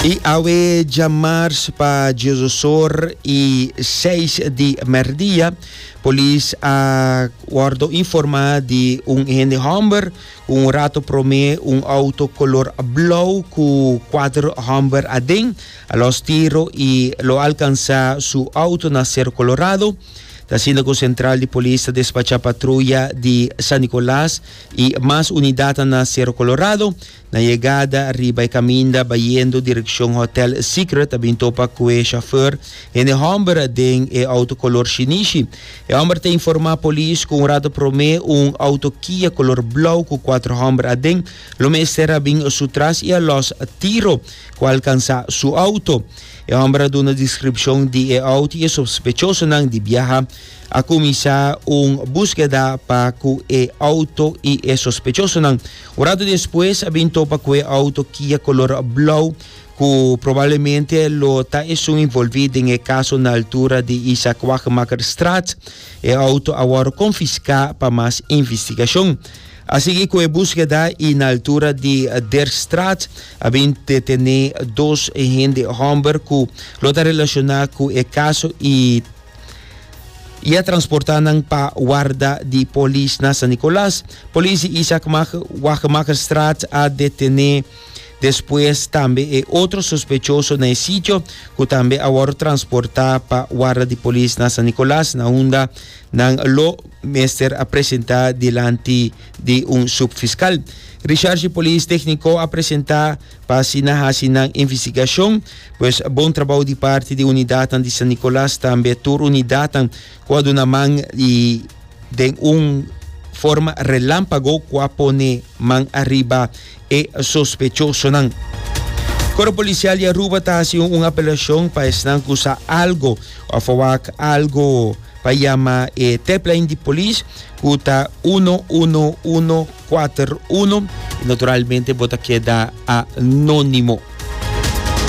Y awe djamars pa Djososor y seis di merdia, polis a wordo informa di un hende homber cu un rato prome un auto color blauw cu cuater homber aden a los tiro y lo alcansa su auto na Cerro Colorado. Ta asina cu central di polis ta despacha patruya di San Nicolas y mas unidadnan na Cerro Colorado. Na yegada riba e kaminda bayendo direkshon Hotel Secret a bin topa ku e shofèr hende hòmber den e outo kolor shinishi. E hòmber ta informá polis ku un rato promé un outo Kia kolor blou ku kuater hòmber aden lo mester a bin su tras i a lòs tiro ku a alkansá su outo. E hòmber a duna deskripshon di e outo i e sospechosonan di biaha a kuminsá un buskeda pa ku e outo i e sospechosonan Un rato despues a bin topa ku e outo Kia kolor blou ku probablemente lo ta esun involví den e kaso na altura di Isaac Wachemakerstraat. E outo a wòrdu konfiská pa mas investigashon. A sigui ku e buskeda i na altura di Derstraat a bin detené dos hende hòmber ku lo ta relashoná ku e kaso i y a transporta nan pa warda di polis na San Nicolas. Polis di Isaac Wagemagerstraat a detene despues tambe e otro sospechoso na e sitio cu tambe a wor transporta pa warda di polis na San Nicolas na unda nan lo mester a presenta dilanti di un subfiscal. Recherche Polis Tecnico a presenta Pa asina hasi nan investigashon. Pues bon trabou di parti di unidatnan di San Nicolas tambe tur unidatnan ku a duna man i den un forma relampago ku a pone man ariba e sospechosonan. Koro Polisial di Aruba ta hasi un apelashon pa esnan ku sa algo òf a wak algo pa yama e tèplain di polis ku ta uno uno uno. 4-1 y naturalmente bo ta keda anónimo.